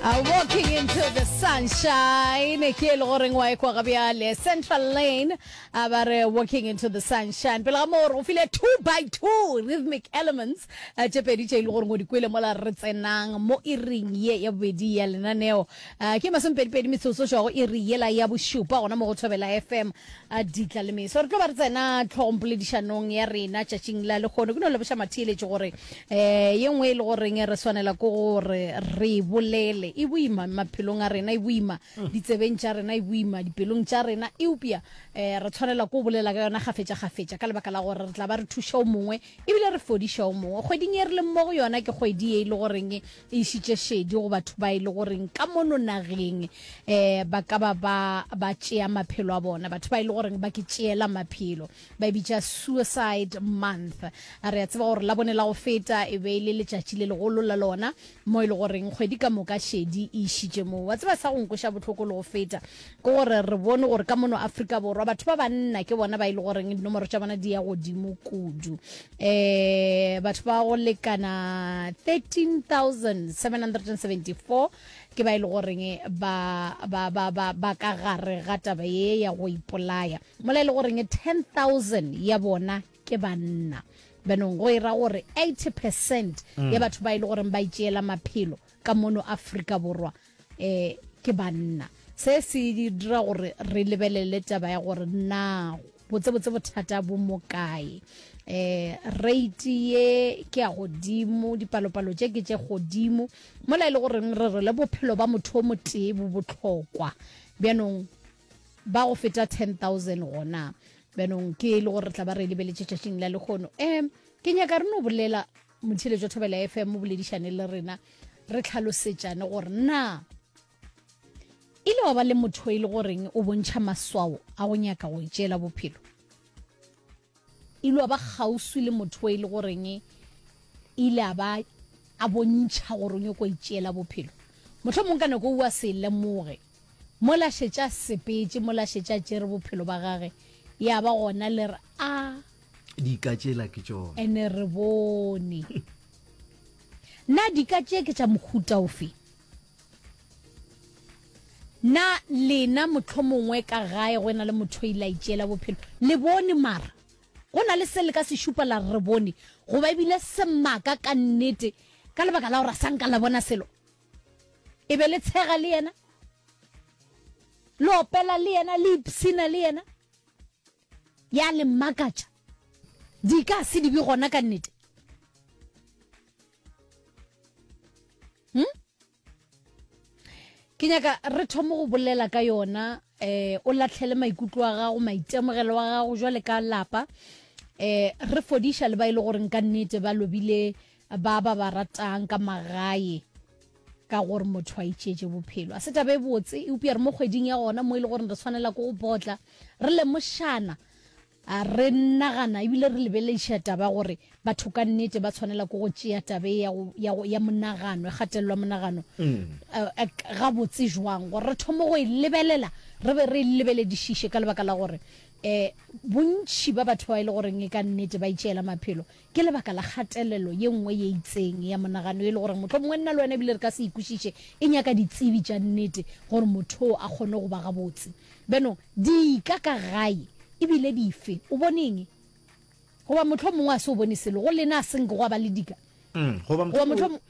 Uh, walking into the sunshine ke e le goreng wa ekwa ga bjale central lane a ba re walking into the sunshine pele ga moo re go file two by two rhythmic elements uh, tše pedi tše e le goreng o di kwele mola re tsenang mo iring ye ya bobedi ya lenaneo A ke masomepedipedi metsotso go go iri yela ya bošupa gona mo go Thobela FM, a Ditla le Meso. Re tlo ba re tsena tlhogongpoledišanong ya rena tšatšing la lekgono. Ke no leboša matheeletši gore um ye nngwe e le goreng re swanela ke gore re e bolele. E boima maphelong a rena, e boima ditsebeng tša rena, e boima dipelong tša rena, eupša um re tshwanela ke go bolela ka yona kgafetšakgafetša ka lebaka la gore re tla ba re thuša o mongwe ebile re fodiša o mongwe. Kgweding ye re leng mo go yona ke kgwedi ye e le goreng e išitše šedi go batho ba e le goreng ka mono nageng um ba ka ba ba ba tšea maphelo a bona batho ba e le goreng ba ke tšeela maphelo ba e bitša suicide month re a tseba gore la bone la go feta e be e le letšatši le legolo la lona mo e le goreng kgwedi ka moka šedi e išitše moo wa tseba sa go nkoša bohloko le go feta ke gore re bone gore ka mono afrika borwa batho ba banna ke bona ba e le goreng dinomoro tša bona di ya godimo kudu eh batho ba go lekana 13774 ke ba e le goreng ba ba ba ba ba ka gare ga taba ye ya go ipolaya mola e le goreng 10000 ya bona ke banna benong go ira gore 80 percent ya batho ba e le goreng ba itšeela maphelo ka mono aforika borwa e ke banna se se dira gore re lebelele taba ya gore na botsebotse bothata bo mo kae eh rate ye ke ya godimo dipalopalo tše ke tše godimo mola e le goreng re re le bophelo ba motho o motee bo botlhokwa bjanong ba go feta 10000 gona bjanong ke e le gore re tla ba re lebeletše tšatšing la lekgono um ke nyaka re no bolela Motheeletšo Thobela FM boledišane le rena re tlhalosetšane gore na e le wa ba le motho e le goreng o bontšha maswao a go nyaka go itšeela bophelo e le wa ba kgauswi le motho e le goreng e ile a ba a bontšha gore o nyoko itšeela bophelo motlho mong ka nako o a se lemoge mo la šetša sepetse mo la šetša tšere bophelo ba gage ya ba gona le re a dika tšela ke tšona ene re bone na dika tše ke tša mohuta ofe na lena motlho mongwe ka gae go ena le motho ile a itšeela bophelo le bone mara go na le se le ka se šupa la re bone goba ebile semaka ka nnete ka lebaka la gore a sanka la bona selo e be le tshega le yena le opela le yena le ipsina le yena Ya le mmakatša. Di ka se di be gona ka nnete. Hmm? Ke nyaka re thome go bolela ka yona eh o latlhele maikutlo a gago maitemogelo wa gago jwale ka lapa eh re fodiša le ba ile e gore nka nnete ba lobile ba ba ba ratang ka magae ka gore motho a itšeetše bophelo a se taba e botse eupša re mo kgweding ya gona mo e le gore re tshwanela ko go botla re lemošana re nagana ebile re lebelediša taba gore batho ka nnete ba tshwanela ko go tšea tabe ya monagano e gatelelwa monagano mm. ga botse jwang gore re thome go e lebelela re be re e lebeledišiše ka lebaka la gore um bontšhi ba batho ba e le goreng e ka nnete ba itšeela maphelo Ke lebaka la kgatelelo ye nngwe ye itseng ya monagano ye e le gore mohlomongwe nna le wena ebile re ka se e kwešiše. E nyaka ditsebi tša nnete gore motho o a kgone go ba gabotse. Beno, dika ka gae e bile dife? O bone eng? Goba mohlomongwe a se o bone selo. Go lena a se nke gwa ba le dika. Goba mohlomongwe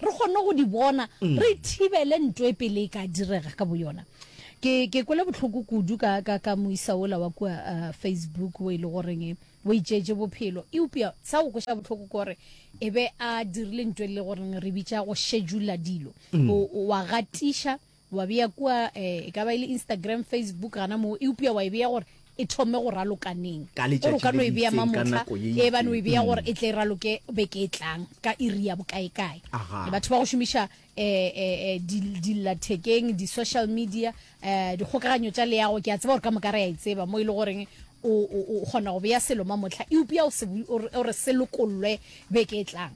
re kgone go di bona mm. re thibele nto e pele e ka direga ka boyona ke ke kwele botlhoko kudu ka ka ka moisa ola wa kwa uh, facebook o e le goreng e, o itšeje bophelo eupša sa go kweša botlhoko kore e be a dirile nto e le goreng re bitša go schedula dilo mm. wa gatiša Wa bea kua, e, e ka ba e le Instagram, Facebook, gana moo, eupša wa e bea gore e thome go raloka neng. Ka Gore o letšatši ka le no e bea itseng, ka mamohla, nako ye e ebane o e itseng. bea gore e tle e raloke beke e tlang ka iri ya bokaekae. Aha. Batho ba go šomiša e, e, e, di, dillathekeng, di-social media, e, dikgokaganyo tša leago, ke a tseba gore ka moka re a e tseba mo e le goreng o, o, o kgona go bea selo mamohla eupša o se, o re, o re se lokollwe beke e tlang.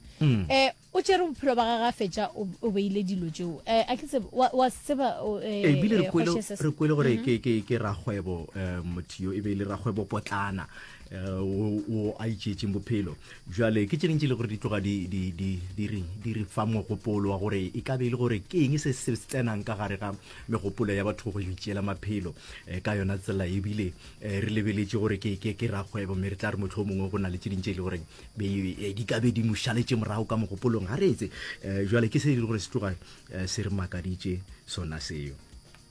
E, O tšere bophelo ba gage a fetša o, o beile dilo tšeo. E, a ke tsebe, wa, wa se tseba, o, e, E, bile re e, kwele, Kgoši SS. re kwele gore ke, ke, ke rakgwebo um, motho yo e be e le rakgwebopotlana um, wo, wo a itšeetšeng bophelo. Bjale ke tše ding tše e le gore di tloga di, di, di, di, re, di re fa mogopolo wa gore e ka be e le gore ke eng se se tsenang ka gare ga megopolo ya batho go yo itšeela maphelo um, ka yona tsela e bile um, re lebeletše gore ke, ke, ke rakgwebo mme re tla re mohlomongwe go na le tše ding tše e le gore Be e, di ka be di mo šaletše morago ka mogopolong, ga reetse. E, jwale ke se e le gore se tloga e, se re makaditše sona seo.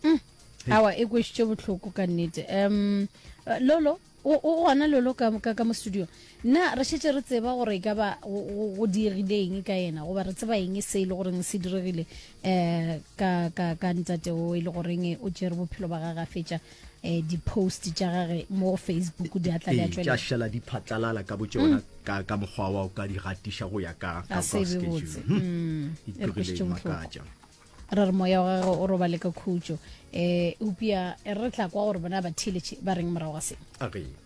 Mm. Awa, e kwešitše bohloko ka nnete. Um, Lolo, o gona lolo ka ka mo studio na re shetse re tseba gore e ka ba go diegile eng ka yena goba re tseba eng e se e le goreng se diregile um ka ka ka ntate o e le goreng o tšere bophelo ba gage a fetša eh, di-post tša gage mo go facebook di a tla di a ee, tša tšwelela šala di phatlalala ka bo tšona Mm. ka ka mokgwa wa o ka di gatiša go ya ka ka- ka se be schedule. botse. Hmm. Mm. E re Iturile kwešitše bohloko. makatša. ra re moya wa gagwe o robale ka khutšo um eupša e re tla kwa gore bona ba theeletše ba reng morago ga seng a re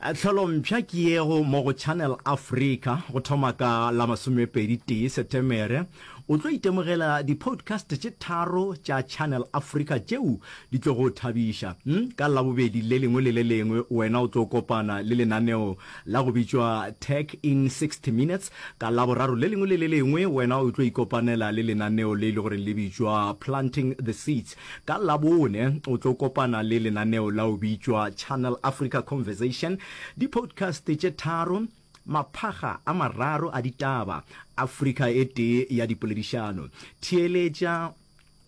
Tlholompsha ke yego mo go Channel Africa go thoma ka la masomepedi tee Setemere. O tlo itemogela di-podcast tše tharo tša Channel Africa tšeo di tlo go thabiša. Ka Labobedi le lengwe le le lengwe wena o tlo kopana le lenaneo la go bitšwa Tech in 60 Minutes. Ka Laboraro le lengwe le le lengwe wena o tlo ikopanela le lenaneo le e le goreng le bitšwa Planting the Seeds. Ka Labone o tlo kopana le lenaneo la o bitšwa Channel Africa Conversation, dipodcast tše tharo, maphaga a mararo a ditaba, Afrika e tee ya dipoledišano. Theeletša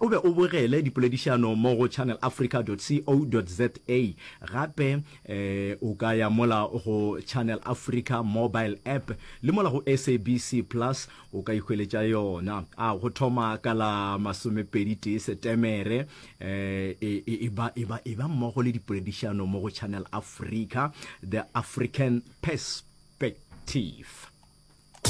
o be o bogele dipoledišano mo go channelafrica.co.za. Gape o ka ya mola go Channel Africa mobile app le mola go SABC Plus o ka ihweletša yona a go thoma ka la masomepedi tee setemere um e, e, e, e ba mmogo le dipoledišano mo go channel africa the african perspective